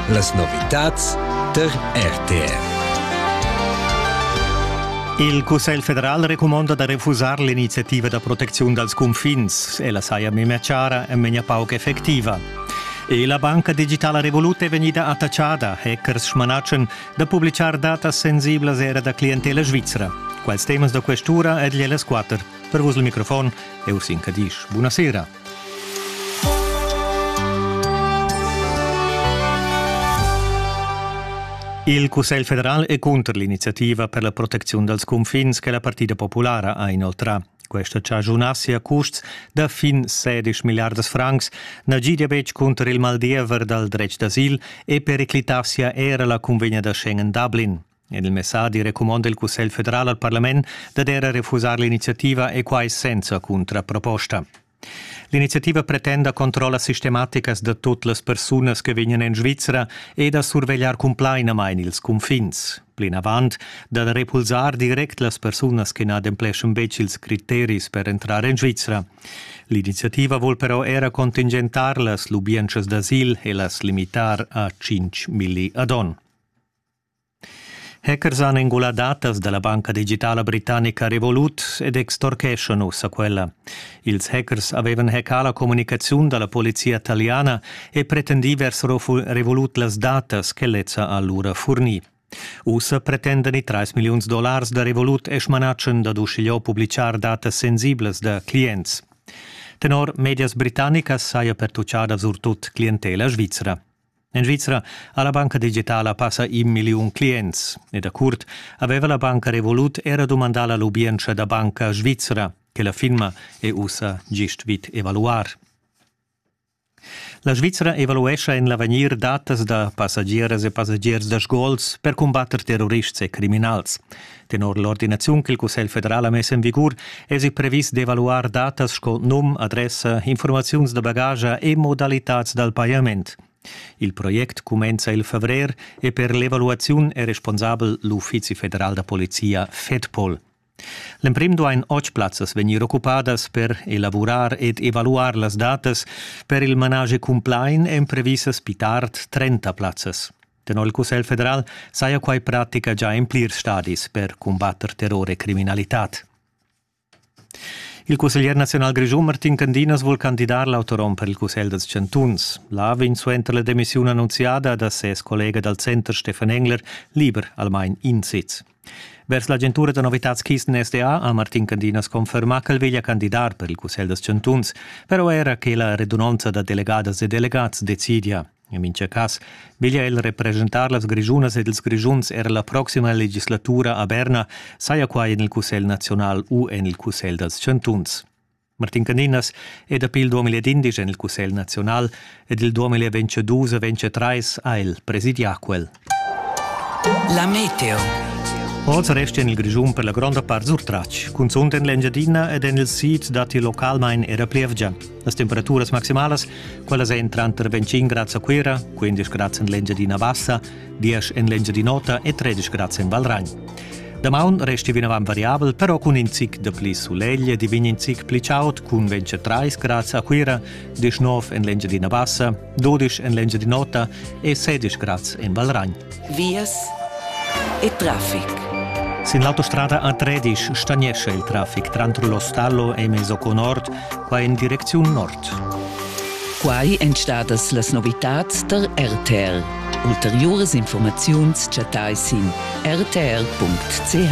Las novitads tar RTR. Il Cussegl federal recumonda da refusar l'iniziativa da protecziun dals cunfins. Ella saja memia chara e memia pauc effectiva. E la banca digitala Revolut è vegnida attachada, hackers smanatschen, da publitgar datas sensiblas era da clientela svizra. Quals temas da questura ed las quatter. Per vos il microfon, eu sin Cadisch. Buonasera. Il Cussegl federal è cunter l'iniziativa per la protecziun dals cunfins che la Partida populara ha inoltrà. Questa chagiunassi a custs da fin 16 milliardas francs na gidia betg cunter il maldiever dal dretg d'asil e periclitassia era la cunvegna da Schengen-Dublin. En il messadi recumonda il Cussegl federal al parlament dad era refusar l'iniziativa e quai senza cuntraproposta. L'iniziativa pretenda controllas sistematicas da tut las persunas che vegnan en Svizra e da survegliar cumplainamain ils cunfins. Plinavant da repulsar direct las persunas che n'adempleschan betg ils criteris per entrar en Svizra. L'iniziativa vul però era contingentar las lubientschas d'asil e las limitar a 5 milli ad onn. Hackers han engulà datas da la banca digitala britannica Revolut ed extorcheschan ussa quella. Ils hackers avevan hackà la communicaziun da la polizia taliana e pretendì vers Revolut las datas che lezza ha lura furnì. Ussa pretendan i 3 milliuns dollars da Revolut e schmanatschen dad uschigliò publichar datas sensiblas da clients. Tenor medias britannicas saja pertuchada surtut clientela svizra. En Svizra ha la banca digitala passa in milliun clients e da curt aveva la banca Revolut era dumandà la lubientscha da banca svizra che la firma è ussa gist vid evaluar. La Svizra evaluescha en l'avegnir datas da passagieras e passagiers da sgols per cumbatter terrorists e criminals. Tenor l'ordinaziun ch'il Cussegl federal ha mess en vigur èsi previs d'evaluar datas sco num, adressa, informaziuns da bagaglia e modalitads dal pajament. Il project cumenza il favrer e per l'evaluaziun è responsabel l'Uffizi federal da polizia FEDPOL. L'emprim duain otg plazzas vegnir occupadas per elavurar ed evaluar las datas. Per il manage cumplain èn previsas pli tard 30 plazzas. Tenor il Cussegl federal saja quai pratica già in plirs stadis per cumbatter terror e criminalitad. Il cusseglier nazional grischun Martin Candinas vul candidar l'autorom per il Cussegl dals chantuns. Là vegn suenter la demissiun annunziada da ses collega dal center Stefan Engler liber almain in sitz. Vers l'agentura da novitads Kisten SDA ha Martin Candinas confermà ch'el veglia candidar per il Cussegl dals chantuns, però era che la redunonza da delegadas e delegats decidia. In mincha cas veglia el represchentar las Grischunas ed ils Grischuns er la proxima legislatura a Berna, saja quai en il Cussegl naziunal u en il Cussegl dals chantuns. Martin Caninas è dapi il 2011 en il Cussegl naziunal ed il 2022 e 2023 ha el presidià quel. La meteo. Oz resti en il Grischun per la gronda part surtratg. Cunzunt en l'Engiadina ed en il sid datti localmain era plievgia. Las temperaturas maximalas, quellas èn tranter 25 grads a Cuira, 15 grads en l'Engiadina Bassa, 10 en l'Engiadin'Ota e 13 grads en Valragn. Damaun resti vinavant variabel, però cun in zic de pli sulegl e di vegn in zic pli chaud, cun 23 grads a Cuira, 19 en l'Engiadina Bassa, 12 en l'Engiadin'Ota e 16 grads en Valragn. Vias e traffic. Sin l'autostrada A13 stagnesce il traffic trantre lo stallo e Mesoco Nord, qua in direcziun nord. Quai èn stadas las novitads tar RTL. Ulteriuras informaziuns chattai sin rtl.ch.